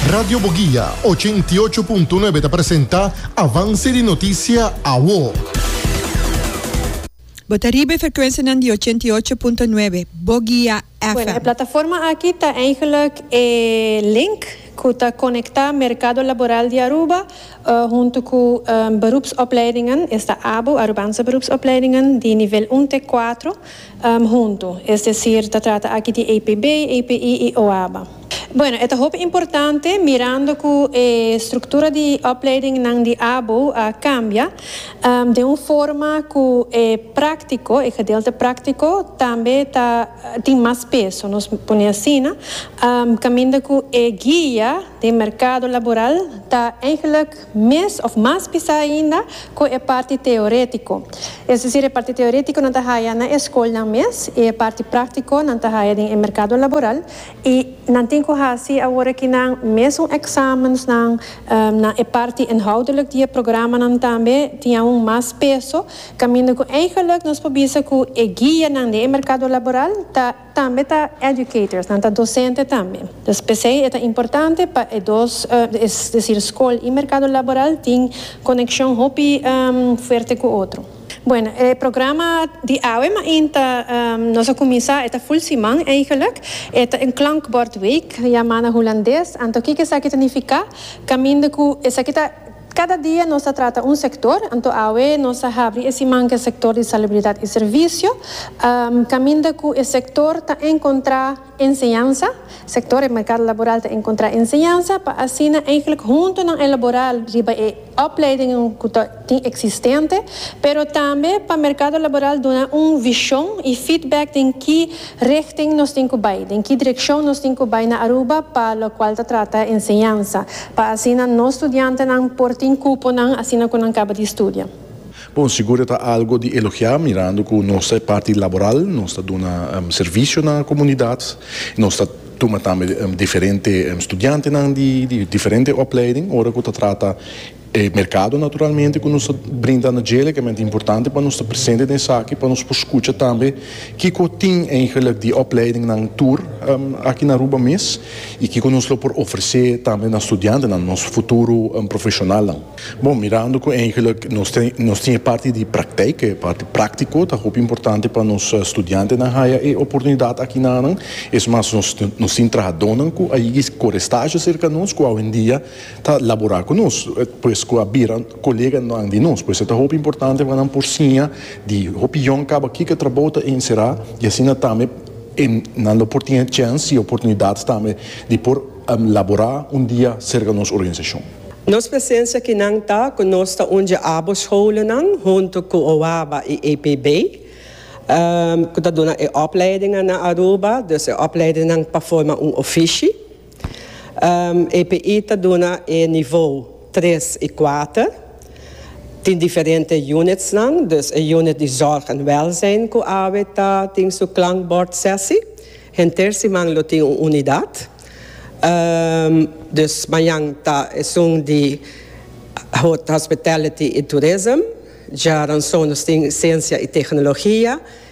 Radio Boguia, ochenta i ocho punto nuebe ta presenta avanse di notisia awo. Bo ta riba e frekwensianan di ochenta i ocho punto nuebe Boguia Bueno, e FM. plataforma aki ta eigenlijk e link cu ta conecta mercado laboral di Aruba hunto cu beroepsopleidingen, esta abo, Arubaanse beroepsopleidingen, di nivel un te cuatro, huntu, es desir ta trata aki di APB, API i OABA. Bueno, e ta hopi importante mirando cu e structura di opleidingnan di abo a cambia den un forma cu e practico, e gedeelte practico, tambe ta tin mas peso, nos pone asina, caminda cu e guia den mercado laboral ta eigenlijk. mes of mas bisa ainda cu e parti teoretico, es decir e parti teoretico nan ta haya na e scolnan mes y e parti practico nan ta haya den e mercado laboral y nan tin cu haci awor aki nan mesun examensnan na e parti inhoudelijk di e programanan tambe tin aun mas peso caminda cu eigenlijk nos por bisa cu e guianan den e mercado laboral ta Tambe ta educators, nan ta docente tambe. Pues p'esei e ta importante pa e dos, es decir scol y mercado laboral tin conexion hopi fuerte cu otro. Bueno, e programa di awe main ta nos a cuminsa, e ta full siman eigenlijk. E ta een klankbordweek, yama na Hulandes. Anto kiko esaki ta nifica? Caminda cu esaki ta. Kada dia nos ta trata un sektor, anto awe nos a habri e siman ku e sektor di salubridat i servisio, kaminda ku e sektor ta enkontrá enseñansa, sektor e merkado laboral ta enkontrá enseñansa pa asina eihglik huntu nan elaborá riba e opleidingen ku ta tin eksistente, pero tambe pa merkado laboral duna un vishon i feedback den ki Richting nos tin cu bay? Den ki direccion nos tin cu bay na Aruba pa locual ta trata enseñansa, pa asina nos studiantenan por tin cuponan asina cu nan caba di studia? Bon, sigur e ta algo di elogia mirando cu nos ta e parti laboral, nos ta duna servicio na comunidad y nos ta tuma tambe diferente studiantenan di diferente opleiding ora cu ta trata E merkado naturalmente ku nos ta brinda na dje legalmente importante pa nos ta presente den esaki pa nos por skucha tambe kiko tin eigenlijk di opleidingnan tur aki na Aruba mes i kiko nos lo por ofresé tambe na studiantenan, nos futuro profeshonalnan. Bon, mirando ku eigenlik nos tin e parti di prakteik, e parti práktiko, ta hopi importante pa nos studiantenan haya e oportunidat aki nanan. Es mas nos tin trahadónan ku a yegis kore stazio serka nos ku awendia ta labora cu nos, pues cu a bira coleganan di nos. Pues e ta hopi importante pa nan por siña di hopi yòn caba kico trabou ta encerá y asina tambe e nan lo por tene chèns y oportunidad tambe di por labora un dia cerca nos organizacion. Nos presencia kinan ta cu nos ta undja abo scholennan hunto cu OABA y EPB cu ta duna e opleidingan na Aruba, dus e opleidinnan pa forma un ofishi. EPI ta duna e nivou tres i kuater. Tin diferente unitsnan, dus e unit di zòrg en wèlzijn ku awe ta tin su klankbòrdsèsi. Henter siman lo tin un unidat. Dus mañan ta esun di hospitality i tourism. Djaransonos tin siensia i teknologia.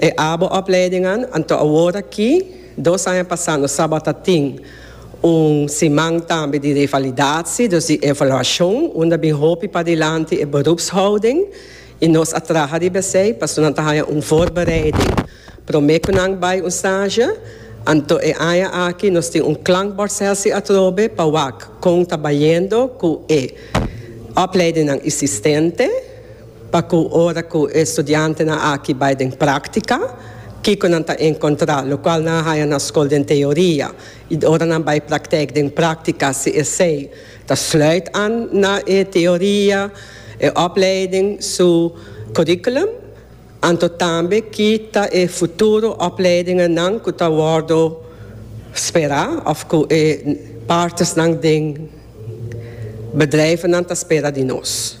E abo opleidingnan anto awor aki, dos aña pasá nos tabata tin un siman tambe di revalidatsi, dus di evaluashon, unda bin hopi padilanti e berupshouding i nos a traha riba esei pasobra nan ta haña un voorbereiding promé ku nan bai un stage. Anto e aña aki nos tin un klankbordsessie atrobe pa wak kon ta bayendo ku e opleidingnan isistente. Pa cu ora cu e studiantenan aki bay den practica, kico nan ta encontra? Locual nan a haya na scol den teoria y ora nan bay practec den practica si esey ta sluit an na e teoria, e opleiding su curriculum? Anto tambe ki ta e futuro opleidingennan cu ta wordo spera of cu e partersnan den bedrijvennan ta spera di nos?